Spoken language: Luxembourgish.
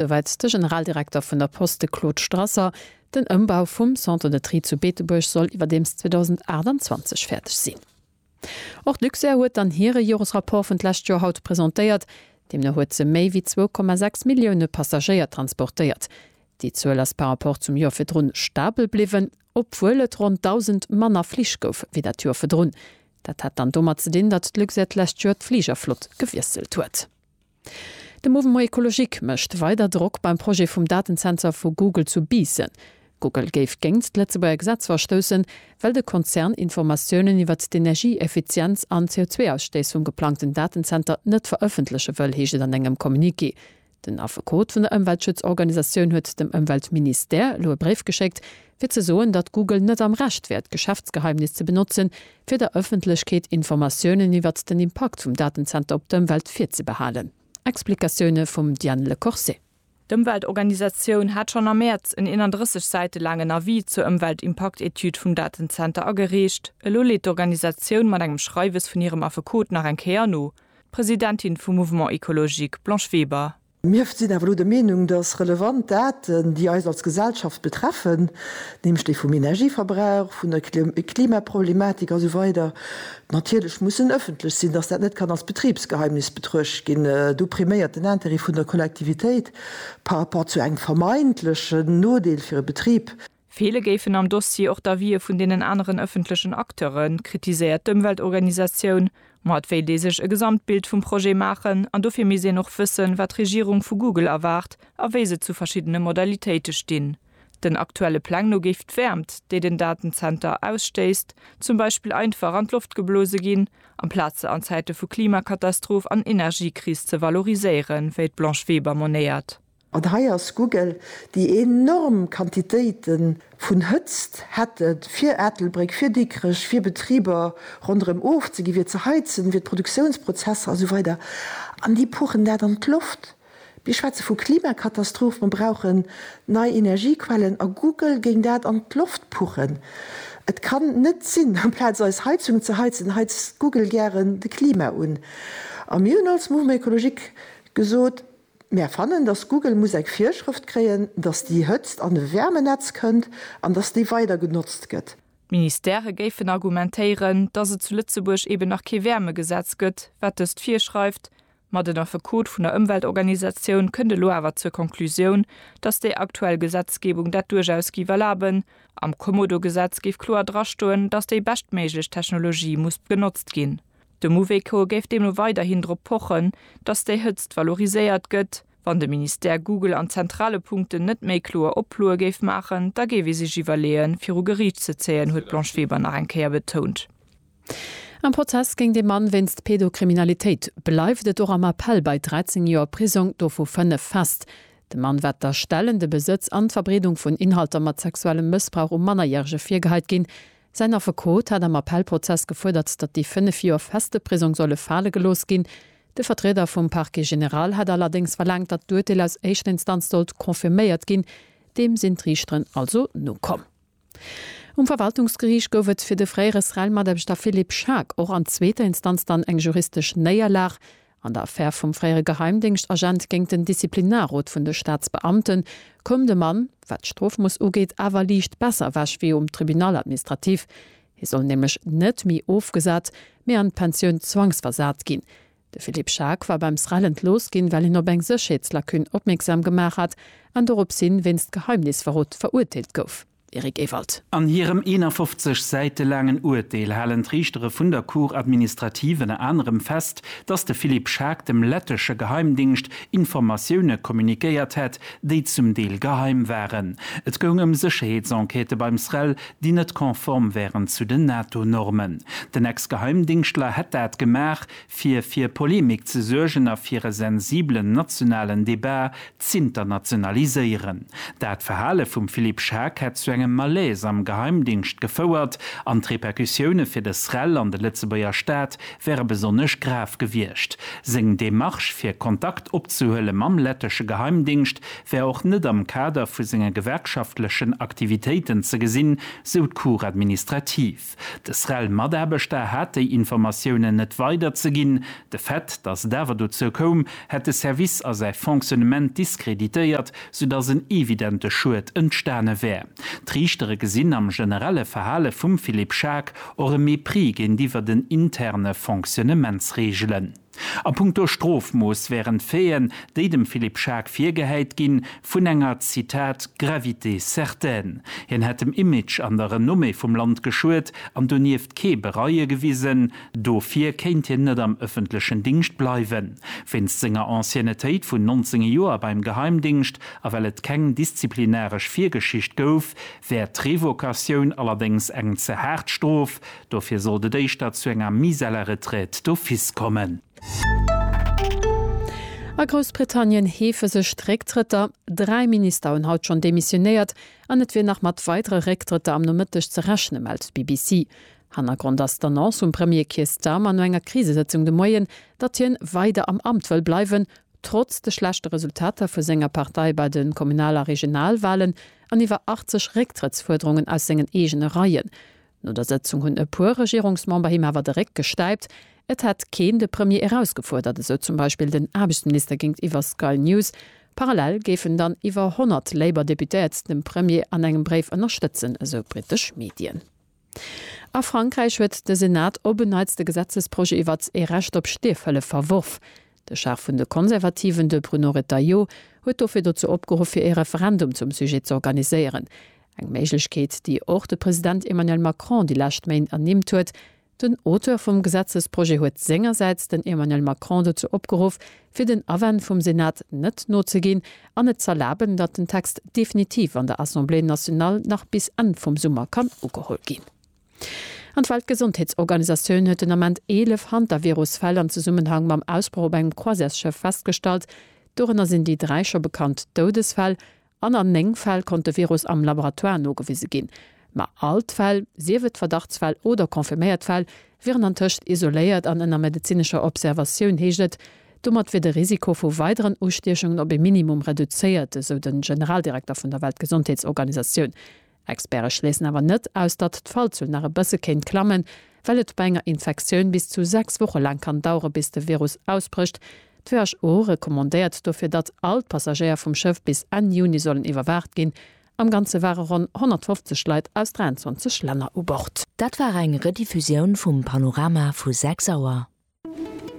soweit de Generaldirekter vun der Post, de Claude Strasser. Den Ëmbau vum Centre de Tri zu Beetebuerg soll iwwerdeems 2028 fäerdeg sinn. Och d'Luxair huet dann hire Joresrapport vun d'lescht Joer haut presentéiert. Deemno huet se méi wéi 2,6 Millioune Passagéier transportéiert. Déi Zuel ass par Rapport zum Joer virdrun stabel bliwwen, obwuel et ronn 1.000 manner Flich gouf wéi dat Joer virdrun. Dat hat dann domat ze dinn, datt d'Luxair d'lescht Joer d'Fligerflott gewiesselt huet. De Mouvement Ecologique mécht weider Drock beim Projet vum Datensensor vu Google zu Biissen. Google géif géingt d'Lëtzebuerger Gesetz verstoussen, well de Konzern Informatiounen iwwert d'Energieeffizienz an d'CO2-Ausstëissung geplangten Datenzenter net verëffentleche wëll, heescht et an engem Communiqué. Den Affekot vun der Ëmweltschutzorganisatioun huet dem Ëmweltministère elo e Bréif geschéckt, fir ze soen, datt Google net am Recht wär, d'Geschäftsgeheimnis ze benotzen, fir der Ëffentlechkeet Informatiounen iwwert den Impakt vum Datenzenter op d'Ëmwelt virzebehalen. Explikatioune vum Diane Le Corset. D'Ëmweltorganisatioun hat schonn am Mäerz en 31 Säite laangen Avis zur Ëmweltimpaktetüd vum Datenzenter agereecht. Elo leet d'Organisatioun mat engem Schreiwes vun hirem Affekot nach eng Kéier no. D'Presidentin vum Mouvement Ecologique, Blanche Weber. Mir sinn awer elo der Meenung, dass relevant Daten, déi eis als Gesellschaft betreffen, nämlech déi vum Energieverbrauch, vun der Klimaproblematik a sou weider natierlech mussen ëffentlech sinn, dass dat net kann als Betribsgeheimnis betruecht ginn. Do priméiert den Intérêt vun der Kollektivitéit par rapport zu engem vermeintlechen Nodeel fir e Betrib. Feele géifen am Dossier och d'Avisë vun deenen aneren ëffentlechen Acteuren, kritiséiert d'Ëmweltorganisatioun. Ma et wéilt ee sech e Gesamtbild vum Projet maachen an dofir misst een och wëssen, wat d'Regierung vu Google erwaart a wéi se zu verschiddene Modalitéite stinn. Den aktuelle Pläng no géif d'Wäermt, déi den Datenzenter ausstéisst, zum Beispill einfach an d'Loft geblose ginn, amplaz se an Zäite vu Klimakatastroph an Energiekris ze valoriséieren, wéi d'Blanche Weber monéiert. An hei ass Google, déi enorm Quantitéite vun Hëtzt hätten, fir Ettelbréck, fir Dikrech, fir Betriber ronderëm ofzegi, fir ze heizen, fir d'Produktiounsprozesser a sou weider, an déi puchen dat an d'Loft. Mir schwätze vu Klimakatastroph, mer brauchen nei Energiequellen, a Google géing dat an d'Loft puchen. Et kann net sinn, amplaz eis Heizung ze heizen, heizt Google gären de Klima un. A mir hunn als Mouvement écologique gesot, Mär fannen, dass Google muss eng Virschrëft kréien, dass déi Hëtzt an e Wärmenetz kënnt an dass déi weider genotzt gëtt. D'Ministere géifen argumentéieren, dass et zu Lëtzebuerg eben nach kee Wäermegesetz gëtt, wat dëst virschreift, ma den Affekot vun der Ëmweltorganisatioun kënnt elo awer zur Konklusioun, dass déi aktuell Gesetzgebung dat duerchaus géif erlaben. Am Kommodo-Gesetz géif kloer drastoen, dass déi beschtméiglech Technologie muss genotzt ginn. De Mouvéco géif deemno weiderhin drop pochen, datt déi Hëtzt valoriséiert gëtt. Wann de Ministère Google an zentrale Punkten net méi kloer Oploe géif maachen, da géif ee sech iwwerleeën, viru Geriicht ze zéien, huet d'Blanche Weber nach eng Kéier betount. Am Prozess géint ee Mann wéinst Pedokriminalitéit bleift et och am Appell bei 13 Joer Prisong, dovu 5 fest. Dem Mann war d'Erstellen, de Besëtz an d'Verbreedung vun Inhalter mat sexuellem Mëssbrauch u Mannerjärege virgehait ginn. Säin Affekot hat am Appellprozess gefuerdert, datt déi fënnef Joer feste Prisong solle fale gelooss ginn. De Vertrieder vum Parquet général hat allerdéngs verlaangt, datt d'Urteel aus éischter Instanz sollt confirméiert ginn. Deem sinn d'Riichteren also nokomm. Um Verwaltungsgeriicht gouf et fir de fréiere SREL-Mataarbechter Philippe Schaack och an zweeter Instanz dann eng juristesch Néierlag. An der Affär vum fréiere Geheimdéngschtagent géint den Disziplinarrot vun de Staatsbeamten koum de Mann, wat d'Strofmooss ugeet, awer liicht besser ewech wéi um Tribunal administratif. Hie soll nämlech net méi ofgesat, mee an d'Pensioun zwangsversat ginn. De Philippe Schaack war beim SREL entlooss ginn, well hien op eng Sécherheetslacune opmierksam gemaach hat an doropshin wéinst Geheimnisverrot verurteelt gouf. Eric Ewald. An hirem 51 Säite laangen Urteel halen d'Riichtere vun der Cour administrative ënner anerem fest, datt de Philippe Schaack dem lettesche Geheimdingscht Informatioune communiquéiert hätt, déi zum Deel geheim waren. Et goung ëm Sécherheetsenquêtë beim SREL, déi net konform wären zu den NATO-Normen. Den Ex-Geheimdingschtler hätt dat gemaach, fir fir Polemik ze suergen a fir e sensiblen nationalen Debat z'internationaliséieren. Dat Verhale vum Philippe Schaack hätt zu engem Malaise am Geheimdingscht gefouert an d'Repercussioune fir de SREL an de Lëtzebuerger Staat wäre besonnesch grav gewiescht. Seng Demarche fir Kontakt opzehuele mam lettesche Geheimdingscht wär och net am Kader vu senge gewerkschaftlechen Aktivitéiten ze gesinn, sou d'Cour administrative. De SREL-Mataarbechter hat déi Informatiounen net weiderzeginn. De Fait, datt et awer dozou koum, hätt de Service a säi Fonctionnement diskreditéiert, soudatt en evidente Schued entstane wär. D'Riichtere gesinn am generelle Verhale vum Philippe Schaack och e Mépris géintiwwer den interne Fonctionnementsreegelen. A punkto Strofmooss wären d'Faiten, déi dem Philippe Schaack virgehäit ginn, vun enger, Zitat, gravité certaine. Hien hätt dem Image an der Renommée vum Land geschuet an donieft kee Bereue gewisen. Dofir kéint hien net am ëffentlechen Dingscht bleiwen. Wéinst senger Anciennetéit vun 19 Joer beim Geheimdingscht a well et keng disziplinaresch Virgeschicht gouf, wär d'Revocatioun allerdéngs eng ze haart Strof, Dofir sollt et éischter zu enger Mise à la retraite d'office kommen. A Groussbritannien heefe sech d'Récktrëtter. Dräi Minister hunn haut schonn demissionéiert an et wier nach mat weidere Récktrëtter am Nomëtteg ze rechne mellt d'BBC. Hannergrond ass d'Annonce vum Premier Keir Starmer no enger Krisesëtzung de Moien, datt hien weider am Amt wëll bleiwen, trotz de schlechte Resultater vu senger Partei bei de Kommunal a Regionalwalen an iwwer 80 Récktrëttsfuerderungen aus sengen eegene Reien. No der Sëtzung hunn e puer Regierungsmember him awer de Réck gestäipt. Et hätt keen de Premier erausgefuerdert, esou zum Beispill den Aarbechtsminister géintiwwer Sky News. Parallel géifen dann iwwer 100 Labour-Deputéiert dem Premier an engem Bréif ënnerstëtzen, esou britesch Medien. A Frankräich huet de Senat op en Neits de Gesetzesprojet iwwert ee Recht op Stierfhëllef verworf. De Chef vun de Konservativen, de Bruno Retailleau, huet dofir dozou opgeruff, fir ee Referendum zum Sujet z'organiséieren. Eng Méiglechkeet, déi och de President Emmanuel Macron déi lescht Méint ernimmt huet. Den Auteur vum Gesetzesprojet huet sengersäits den Emmanuel Macron dozou opgeruff, fir den Awänn vum Senat net nozeginn an et z'erlaben, datt den Text definitiv an der Assemblée nationale nach bis Enn vum Summer kann ugeholl ginn. An d'Weltgesondheetsorganisatioun huet den Ament 11 Hantavirus-Fäll am Zesummenhang mam Ausbroch op engem Croisièresschëff festgestallt. Dorënner sinn déi dräi scho bekannt Doudesfäll an an néng Fäll konnt de Virus am Laboratoire nogewise ginn. Ma all d'Fäll, sief et Verdachtsfäll oder confirméiert Fäll, wieren antëscht isoléiert an ënner medezinescher Observatioun, heescht et. Domat wier de Risiko vu weideren Ustiechungen op ee Minimum reduzéiert, esou de Generaldirekter vun der Weltgesondheetsorganisatioun. Experte schléissen awer net aus, datt d'Fallzuel nach e bësse kéint klammen, well et bei enger Infektioun bis zu 6 Woche laang kann dauere bis de Virus ausbrécht. D'WHO recommandéiert dofir, datt all d'Passagéier vum Schëff bis Enn Juni sollen iwwerwaacht ginn. Am Ganze ware ronn 150 Leit aus 23 Länner u Bord. Dat war eng Rediffusioun vum Panorama vu 6 Auer.